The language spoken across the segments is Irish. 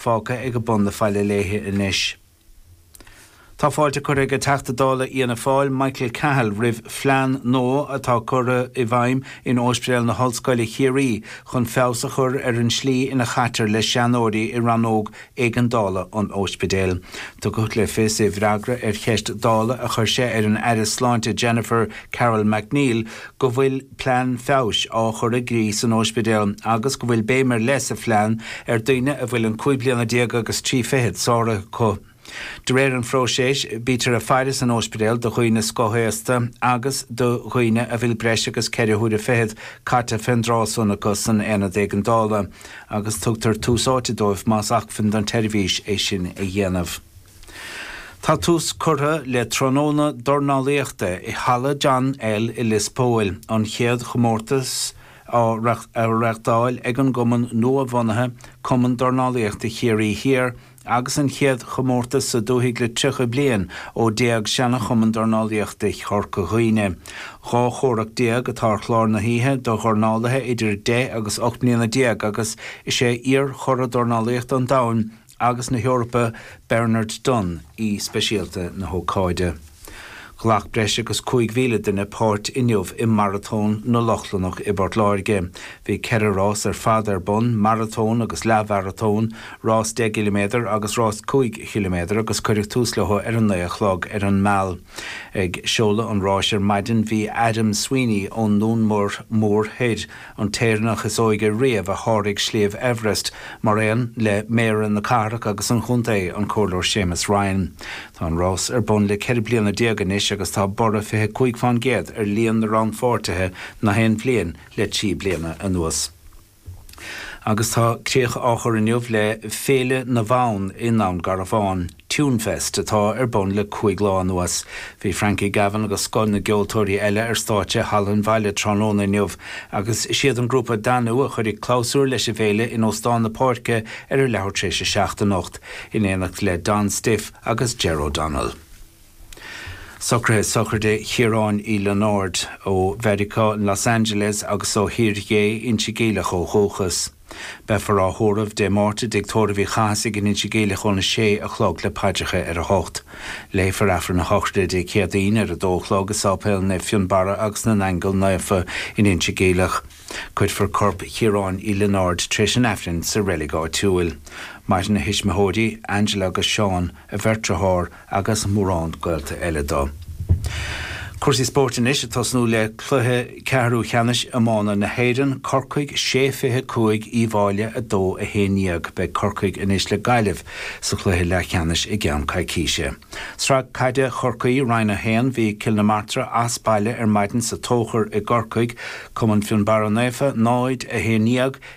fágtha ag a bun na faille léithe anois. Tá fáilte curtha ag an Teachta Dála Fhianna Fáil, Michael Cahill, roimh phlean nua atá curtha i bhfeidhm in Ospidéal na hOllscoile, Chiarraí, chun feabhas a chur ar an tslí ina chaitear le seanóirí i rannóg éigeandála an ospidéil. Tugadh le fios i bhfreagra ar cheist Dála a chuir sé ar an Aire Sláinte Jennifer Carroll MacNeill go bhfuil plean feabhais á chur i gcrích san óispidéal agus go bhfuil béim ar leith sa phlean ar daoine a bhfuil an cúig bliana déag agus trí fichead sáraithe acu. De réir an phróiséis, bítear ag faire san óispidéal do dhaoine scothaosta agus do dhaoine a bhfuil breis agus ceithre huaire fichead caite fén dtráth san acu san aonad éigeandála agus tugtar tús áite dóibh más acmhainn don tseirbhís é sin a dhéanamh. Tá tús curtha le tráthnóna dornálaíochta i Halla John L i Lios Póil, an chéad chomórtas á reáchtáil ag an gcumann nua-bhunaithe, Cumann Dornálaíochta Chiarraí Thiar, agus an chéad chomórtas sa dúthaigh le 30 bliain ó d'éag seana-Chumann Dornálaíochta Chorca Dhuibhne. Dhá chomhrac déag atá ar chlár na hoíche do dhornálaithe idir 10 agus 18 mbliana agus is é iar-churadh dornálaíochta an domhain, agus na hEorpa, Bernard Dunne, aoi speisialta na hócáide. Ghlac breis agus 5,000 duine páirt inniu i Maratón na Lochlannach i bPort Láirge. Bhí ceithre rás ar fad ar bun, maratón agus leath-mharatón, rás 10 gciliméadar agus rás 5 chiliméadar agus cuireadh tús leo ar a naoi a chlog ar an Mall. Ag seoladh an ráis ar maidin bhí Adam Sweeney ón nDún Mór Thoir, an tÉireannach is óige riamh a sháraigh Sliabh Everest, mar aon le Méara na Cathrach agus an Chontae, an Comhairleoir Séamus Ryan. Tá an rás ar bun le ceithre bliana déag anois agus tá borradh 25 fén gcéad ar líon na rannpháirtithe na haon bhliain le trí bliana anuas. Agus tá críoch á chur inniu le Féile na bhFonn i nDún Garbhán. Tunefest, atá ar bun le cúig lá anuas. Bhí Frankie Gavin agus scoth na gceoltóirí eile ar stáitse i Halla an Bhaile tráthnóna inniu, agus is iad an grúpa Danú a chuirfidh clabhsúr leis an bhféile in Óstán na Páirce ar a leathuair tar éis a seacht anocht, in éineacht le Don Stiffe agus Ger O'Donnell. Socruithe sochraide Chiaráin Uí Lionáird, ó Mheiriceá in Los Angeles agus ó Thír Ghé Inse Geimhleach ó dhúchas. Beifear á thórramh Dé Máirt i dTigh Tórraimh Uí Chathasaigh in Inse Geimhleach ón 6 a chlog le paidreacha ar a hocht. Léifear Aifreann a shochraide Dé Céadaoin ar a dó a chlog i Sáipéal Naomh Fionnbarra agus na nAingeal Naofa in Inse Geimhleach. Cuirfear corp Chiaráin Uí Lionáird tar éis an Aifrinn sa reilig áitiúil. Maireann a thuismitheoirí, Angela agus Seán, a bheirt dearthár, agus mórán gaolta eile dó. Cúrsaí spóirt anois, ag tosnú le cluiche ceathrú cheannais iomána na hÉireann, Corcaigh 6 25 Uíbh Fhailí 2 11. Beidh Corcaigh anois le Gaillimh sa chluiche leathcheannais i gceann coicíse. Sraith caide Chorcaí, Roinn 1, Bhí Cill na Martra as baile ar maidin sa Tóchar i gCorcaigh, Cumann Fionnbarra Naofa 0 11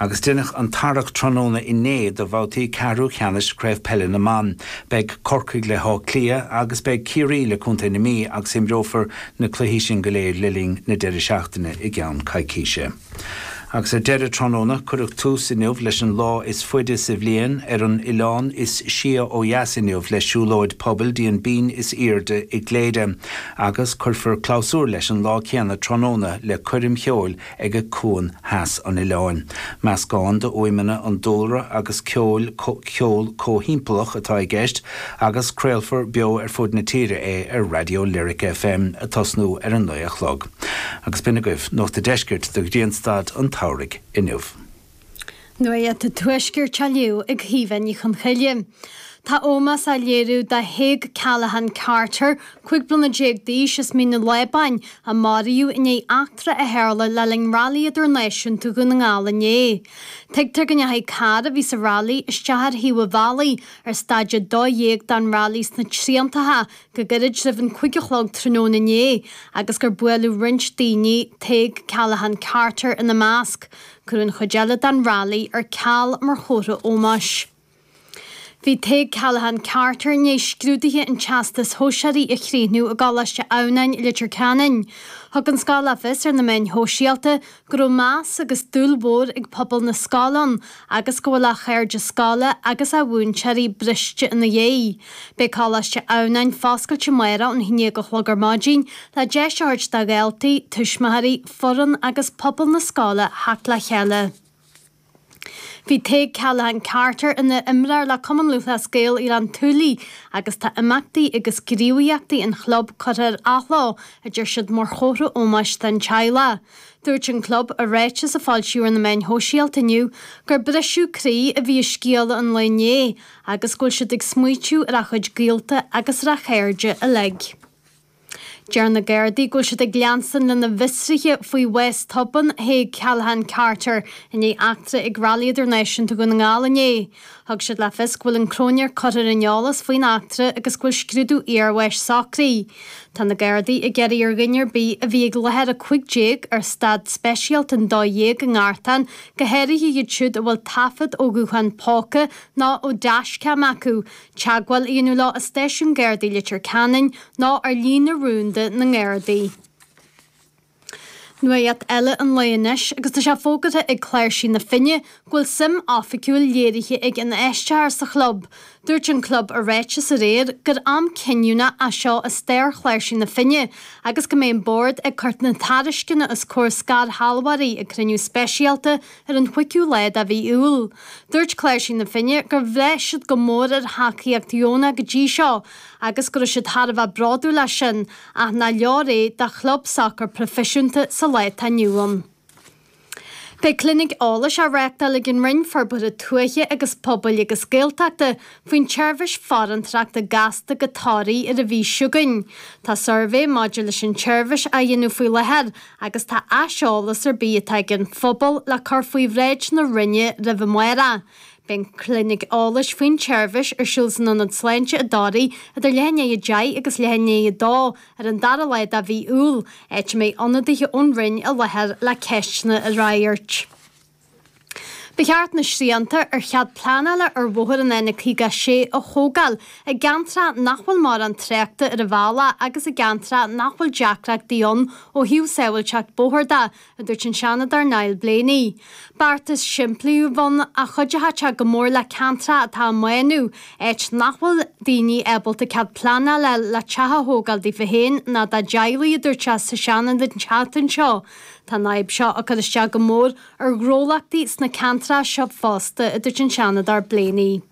Agus deineadh an tarrac tráthnóna inné do bhabhtaí ceathrú cheannais Craobh Peile na mBan. Beidh Corcaigh le hÁth Cliath agus beidh Ciarraí le Contae na Mí agus imreofar na cluichí sin go léir le linn na deireadh seachtaine i gceann coicíse. Agus ar deireadh tráthnóna, cuireadh tús inniu leis an lá is faide sa bhliain ar an oileán is sia ó dheas inniu le siúlóid pobail dtí an binn is airde i gCléire agus cuirfear clabhsúr leis an lá céanna tráthnóna le coirm cheoil ag ag cuan theas an oileáin. Meascán d'fhuaimeanna an dúlra agus ceoil, ceol comhthimpeallach atá i gceist agus craolfar beo ar fud na tíre é ar Raidió Lyric FM ag tosnú ar a naoi a chlog. Agus b'in agaibh Nuacht a' Deiscirt do Ghrianstad an tSamhraidh inniu. Nuacht an Tuaiscirt á léamh ag Caoimhe Ní Chonchoille, tá ómós á léiriú do Thadhg Callaghan, Carter, 15 bliana d'aois as Mín an Lábáin, a maraíodh i ndiaidh eachtra a tharla le linn Railí Idirnáisiúnta Dhún na nGall inné. Tuigtear go ndeachaigh carr a bhí sa railí isteach ar thaobh an bhealaigh ar staid 12 den railí sna Triantacha go gairid roimh an cúig a chlog tráthnóna inné agus gur buaileadh roinnt daoine, Tadhg Callaghan, Carter, ina measc. Cuireadh an chuid eile den railí ar ceal mar chomhartha ómóis. Bhí Tadhg Callaghan Carter i ndiaidh scrúduithe an Teastais Shóisearaigh a chríochnú i gColáiste Adhamhnáin, Leitir Ceanainn. Thug an scoil le fios ar na meáin shóisialta go raibh meas agus dúil mhór ag pobal na scoile ann agus go bhfuil a chairde scoile agus a mhúinteoirí briste ina dhiaidh. Beidh Coláiste Adhamhnáin foscailte amárach ón 11 a chlog ar maidin le deis a thabhairt do dhaltaí, tuismitheoirí, foireann agus pobal na scoile theacht le chéile. Bhí Tadhg Callaghan Carter ina imreoir le Cumann Lúthchleas Gael Ghleann tSúilí agus tá imeachtaí agus gníomhaíochtaí an chlub curtha ar athló, a deir siad mar chomhartha ómóis don teaghlach. Dúirt an club i ráiteas a foilsíodh ar na meáin shóisialta inniu gur briseadh croí a bhí i scéala an lae inné agus go bhfuil siad ag smaoitiú ar a chuid gaolta agus ar a chairde uilig. Deir na Gardaí go bhfuil siad ag leanstan lena bhfiosruithe faoi bhás tobann Thaidhg Callaghan Carter i ndiaidh eachtra ag Railí Idirnáisiúnta Dhún na nGall inné. Thug siad le fios go bhfuil an cróinéir curtha ar an eolas faoin eachtra agus go bhfuil scrúdú iarbháis socraithe. Tá na Gardaí ag iarraidh ar dhuine ar bith a bhí ag láthair 15 ar staid speisialta an dó dhéag i nGartán, go háirithe iad siúd a bhfuil taifead ó ghutháin póca nó ó dashcam acu, Teagmháil a dhéanamh leo i Stáisiún Gardaí Leitir Ceanainn nó ar líne rúnda na nGardaí. Nuacht eile an lae anois agus tá sé fógartha ag Cláirsigh na Finne go bhfuil suim oifigiúil léirithe ag infheisteoir sa chlub. Dúirt an club i ráiteas aréir gur am cinniúnach é seo i stair Chláirsigh na Finne agus go mbeidh an bord ag cur na tairisceana os comhair scairshealbhóirí ag cruinniú speisialta Ar an chuigiú lá de mhí Iúil, dúirt Cláirsigh na Finne gur bhraith siad go mór ar thacaíocht dheonach go dtí seo agus go raibh siad thar a bheith bródúil as sin ach nár leor é do chlub sacair proifisiúnta sa lá atá inniu ann. Beidh clinic eolais á reáchtáil ag an Roinn Forbartha Tuaithe agus Pobail agus Gaeltachta faoin tseirbhís farantóireachta gasta go Toraigh ar an mhí seo chugainn. Tá suirbhé maidir leis an tseirbhís á dhéanamh faoi láthair agus tá aiseolas ar bith atá ag an phobal le cur faoi bhráid na Roinne roimh an amárach Beidh an clinic eolais faoin tseirbhís ar siúl san Ionad Sláinte i dToraigh idir leath i ndiaidh a deich agus leath i ndiaidh a dó ar an dara lá de mhí Iúil, áit a mbeidh ionadaithe ón Roinn i láthair le ceisteanna a fhreagairt. Ba cheart na srianta ar chead pleanála ar bhóthar an N56 a thógáil i gceantracha nach bhfuil mórán tráchta ar a bhealach agus i gceantracha nach bhfuil deacrachtaí ann ó thaobh sábháilteacht bóthair de, a dúirt an Seanadóir Niall Blaney. Beartas simplí a bheadh ann a chuideodh go mór le ceantracha atá á mbánú, áit nach bhfuil daoine ábalta cead pleanála le teach a thógáil daofa féin ná dá dteaghlaigh, a dúirt sé sa Seanad an tseachtain seo. Tá an fhadhb seo ag cur isteach go mór ar ghnólachtaí sna ceantracha seo fosta, a dúirt an Seanadóir Blaney.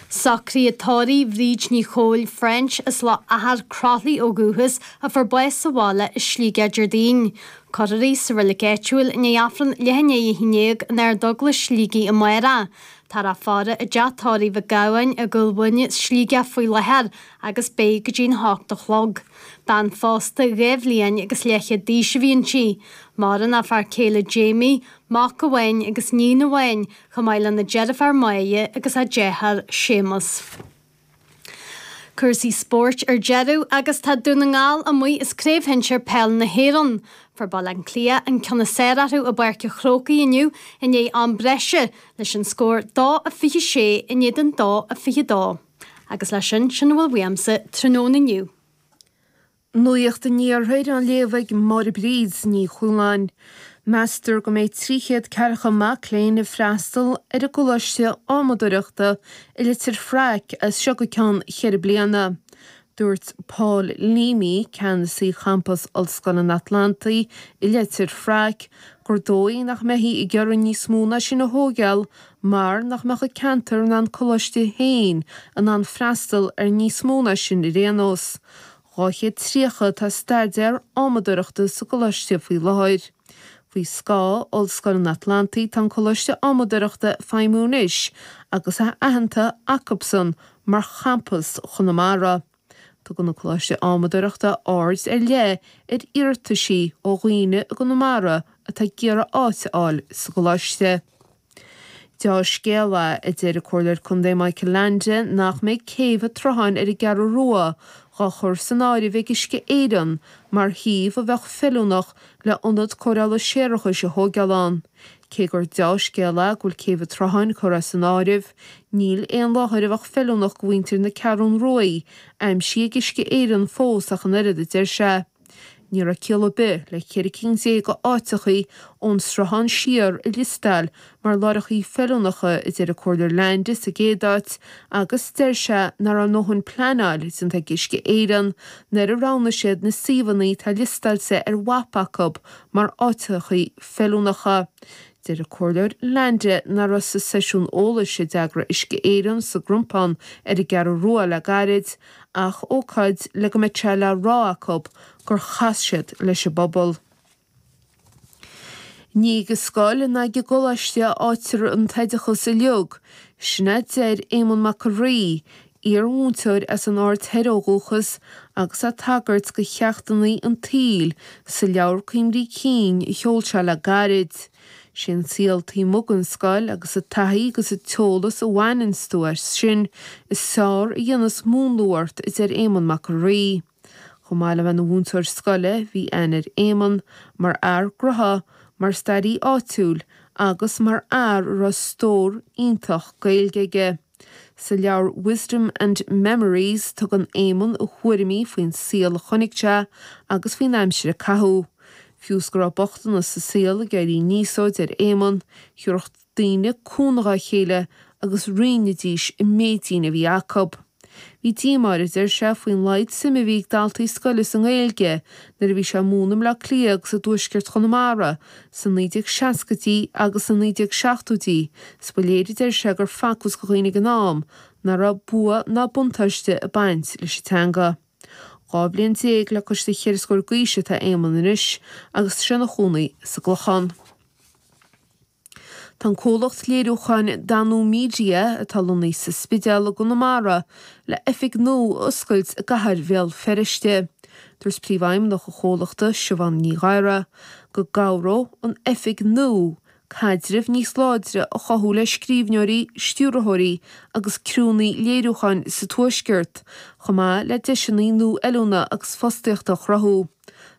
Socruithe tórraimh Bhríd Ní Chomhaill, French, as Loch Athair Croithlí ó dhúchas, a fuair bás sa bhaile i Sligeach Déardaoin. Cuirfear í sa reilig áitiúil i ndiaidh Aifreann leath i ndiaidh a haon déag in Ardeaglais Shligigh amárach. Táthar á faire i dteach tórraimh Mhic Gabhann i gCúil Mhuine, Sligeach, faoi láthair agus beidh go dtí a hocht a chlog. Bean phósta dhá bhliain agus leathchéad d'aois a bhí inti. Maireann a fear céile Jamie, mac amháin agus níon amháin, chomh maith lena deirfiúr Máire agus a deartháir Séamus. Cúrsaí spóirt ar deireadh agus tá Dún na nGall amuigh as Craobh Shinsir Peil na hÉireann. Fuair Baile Átha Cliath an ceann is fearr orthu i bPáirc a' Chrócaigh inniu i ndiaidh am breise, leis an scór 2 a 26 in éadan 2 a 22. Agus leis sin, sin a bhfuil uaimse tráthnóna inniu. Nuacht an Iarthair á léamh ag Máire Bríd Ní Chualáin. Meastar go mbeidh 300 ceathracha mac léinn ag freastal ar an gColáiste Adhmaadóireachta i Leitir Fraic as seo go ceann cheithre bliana. Dúirt Paul Leamy, Ceannasaí Champas Ollscoil an Atlantaigh i Leitir Fraic, gur dóigh nach mbeifí ag iarraidh níos mó ná sin a thóigeáil mar nach mbeadh an ceantar ná an coláiste féin in ann freastal ar níos mó ná sin ar aon nós. 230 atá ag staidéar adhmadóireachta sa gcoláiste faoi láthair. Faoi scáth Ollscoil an Atlantaigh, tá an Coláiste Adhmadaireachta ag feidhmiú anois agus é aitheanta acusan mar Champas Chonamara. Tugann an Coláiste Adhmadaireachta aird ar leith ar iarrataisí ó dhaoine i gConamara atá ag iarraidh áit a fháil sa gColáiste. Deá-scéala, a deir an Comhairleoir Contae Michael Leainde nach mbeidh céibh an tSrutháin ar an gCeathrú Rua dhá chur san áireamh ag Uisce Éireann mar shuíomh a bheadh feiliúnach le hionad cóireála séarachais a thóigeáil ann. Cé gur deá-scéala go bhfuil céibh an tSrutháin curtha as an áireamh, níl aon láthair a bheadh feiliúnach go mhuintir na Ceathrún Ruaidh aimsithe ag Uisce Éireann fós ach an oiread, a deir sé. Ní raibh ciall ar bith le ceithre cinn déag go áiteachaí ón Sruthán siar a liostáil mar láithreachaí feiliúnacha, a deir an Comhairleoir Leainde sa gcéad áit, agus deir sé nach raibh a ndóthain pleanáil déanta ag Uisce Éireann nuair a roghnaigh siad na suíomhannaí atá liostáilte ar mhapa acu mar áiteachaí feiliúnacha. Deir an Comhairleoir Leainde nach raibh sa seisiún eolais a d'eagraigh Uisce Éireann sa gCrompán ar an gCeathrú Rua le gairid, ach ócáid le go mbeadh sé le rá acu gur chas siad leis an bpobal. Ní ag an scoil ná ag an gcoláiste a fháightear an t-oideachas uiliog, sin a deir Éamonn Mac an Rí, iar-mhúinteoir as an Aird Thoir ó dhúchas agus é ag tagairt do cheachtannaí an tsaoil sa leabhar cuimhní cinn a sheol sé le gairid. Sé an saol taobh amuigh den scoil agus an taithí agus an t-eolas a bhaineanns tú as sin, is fearr a dhéanas múnlú ort a deir Éamonn Mac an Rí. Chomh maith le bheith ina mhúinteoir scoile, bhí aithne ar Éamonn mar fhear gnotha, mar staraí áitiúil agus mar fhear a raibh stór iontach Gaeilge aige. Sa leabhar Wisdom and Memories, tugann Éamonn a thuairimí faoin saol a chonaic sé agus faoin aimsir a caitheadh. Fiú is go raibh bochtanas sa saol ag éirí aníos dó, a deir Éamonn, thiúrfadh daoine cúnamh dá chéile agus roinnidís an méidín a bhí acu. Bhí díomá air, a deir sé, faoin laghad suime a bhí ag daltaí scoile sa nGaeilge nuair a bhí sé ag múineadh i mBaile Átha Cliath agus i dtuaisceart Chonamara Sna 1960idí agus sna 1970idí, is ba léir, a deir sé, gur facthas do dhaoine ag an am nach raibh bua ná buntáiste ag baint leis an teanga. Dhá bhliain déag le cois do cheithre scór d'aois atá Éamonn anois agus tá sé ina chónaí sa gClochán. Tá an comhlacht léiriúcháin Danú Media, atá lonnaithe sa Spidéal i gConamara, le oifig nua a oscailt i gcathair Bhéal Feirste. Dúirt Príomhfheidhmeannach an chomhlachta, Siubhán Ní Ghadhra, go gcabhródh an oifig nua caidreamh níos láidre a chothú le scríbhneoirí, stiúrthóirí agus criúnnaí léiriúcháin sa Tuaisceart, chomh maith le deiseanna nua oiliúna agus fostaíochta a chruthú.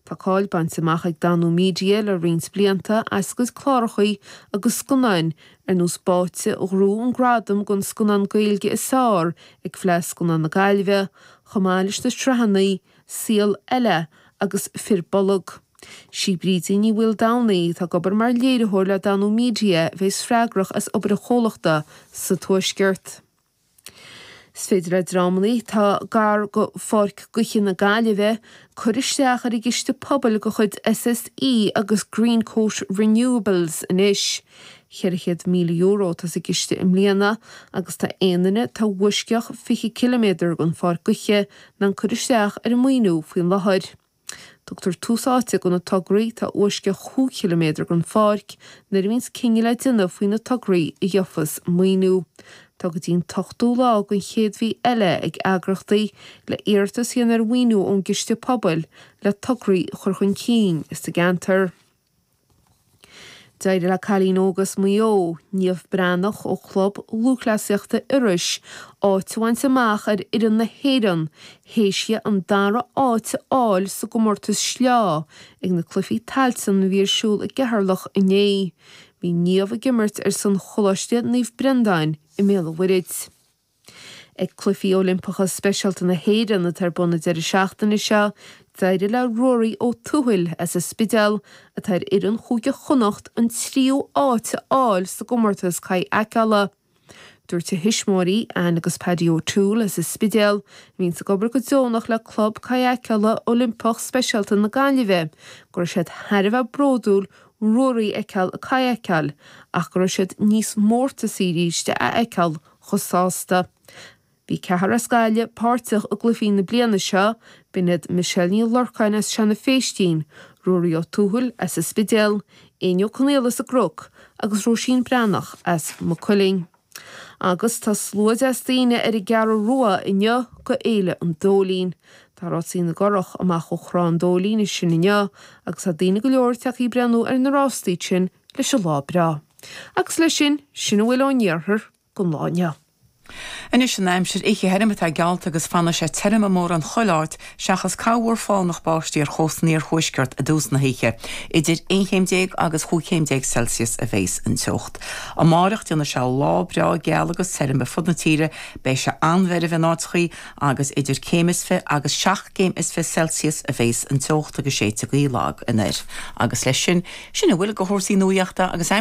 Tá cáil bainte amach ag Danú Media le roinnt blianta as a gcuid clárachaí agus scannáin, ar nós Báite, a ghnóthaigh an gradam don scannán Gaeilge is fearr ag Fleadh Scannán na Gaillimhe, Chomh maith leis na sraitheanna, Saol Ella agus Fir Bolg. 'Sí Brídín Ní Mhaoldomhnaigh atá ag obair mar léiritheoir le Danú Media a bheidh freagrach as obair an chomhlachta sa Tuaisceart. Is féidir le dreamanna atá gar do Pháirc Gaoithe na Gaillimhe cur isteach ar an gciste pobail de chuid SSE agus Greencoat Renewables anois. €400,000 atá sa gciste i mbliana agus tá aon dream atá uisceach 20 ciliméadar ón pháirc gaoithe in ann cur isteach ar an maoiniú faoin láthair. Tugtar tús áite do na tograí atá i bhfoisceacht 5 ciliméadar ón pháirc nuair a bhíonns cinneadh le déanamh faoi na tograí a gheofas maoiniú. Tá go dtí an t-ochtú lá den chéad mhí eile ag eagraíochtaí le hiarratas a dhéanamh ar mhaoiniú ón gciste pobail le tograí a chur chun cinn sa gceantar. D'éirigh le cailín óg as Maigh Eo, Niamh Breathnach ó Chlub Lúthchleasaíochta Iorrais, áit a bhaint amach ar fhoireann na hÉireann théis di an dara háit a fháil sa gcomórtas sleá ag na Cluichí Tailteann a bhí ar siúl i gCeatharlach inné. Bhí Niamh ag imirt ar son Choláiste Naomh Breandán i mBéal an Mhuirthid. Ag Cluichí Oilimpeacha Speisialta na hÉireann atá ar bun an deireadh seachtaine seo, d'éirigh le Ruairí Ó Tuathail as an Spidéal, atá ar fhoireann Chúige Chonnacht, an tríú áit a fháil sa gcomórtas kayakeála. Dúirt a thuismitheoirí, Anne agus Paddy O'Toole as an Spidéal, a bhíonns ag obair go deonach le Club Kayakeála Oilimpeach Speisialta na Gaillimhe, go raibh siad thar a bheith bródúil Ruairí a fheiceáil ag kayakeáil ach go raibh siad níos mórtasaí arís é a fheiceáil chomh sásta. Bhí ceathrar as Gaillimh páirteach i gcluichí na bliana seo, b'in iad Michelle Ní Lorcáin as Seanadh Féistín, Ruairí Ó Tuathail as an Spidéal, Éinne Ó Conaola as an gCruc agus Róisín Breathnach as Maigh Cuilinn. Agus tá slua deas daoine ar an gCeathrú Rua inniu do Fhéile an Dóilín. Tá Rásaí na gCurach amach ó Thrá an Dóilín ansin inniu agus tá daoine go leor ag teacht ag breathnú ar na rástaí sin leis an lá breá. Agus leis sin, sin a bhfuil ón Iarthar don lá inniu. Anois an aimsir oíche thirim atá geallta agus fanfaidh sé tirim mórán chuile áit seachas corrmhúr fánach báistí ar chósta an iarthuaiscirt i dtús na hoíche. Idir aon chéim déag agus chúig chéim déag Celsius a bhéas an teocht. Amárach déanfaidh sé lá breá geal agus tirim ar fud na tíre, beidh sé an-mheirbh in áiteachaí agus idir céim is fiche agus seacht gcéim is fiche Celsius a bhéas an teocht agus séidfidh gaoth lag anoir agus leis sin, sin a bhfuil de chúrsaí nuaíochta againn.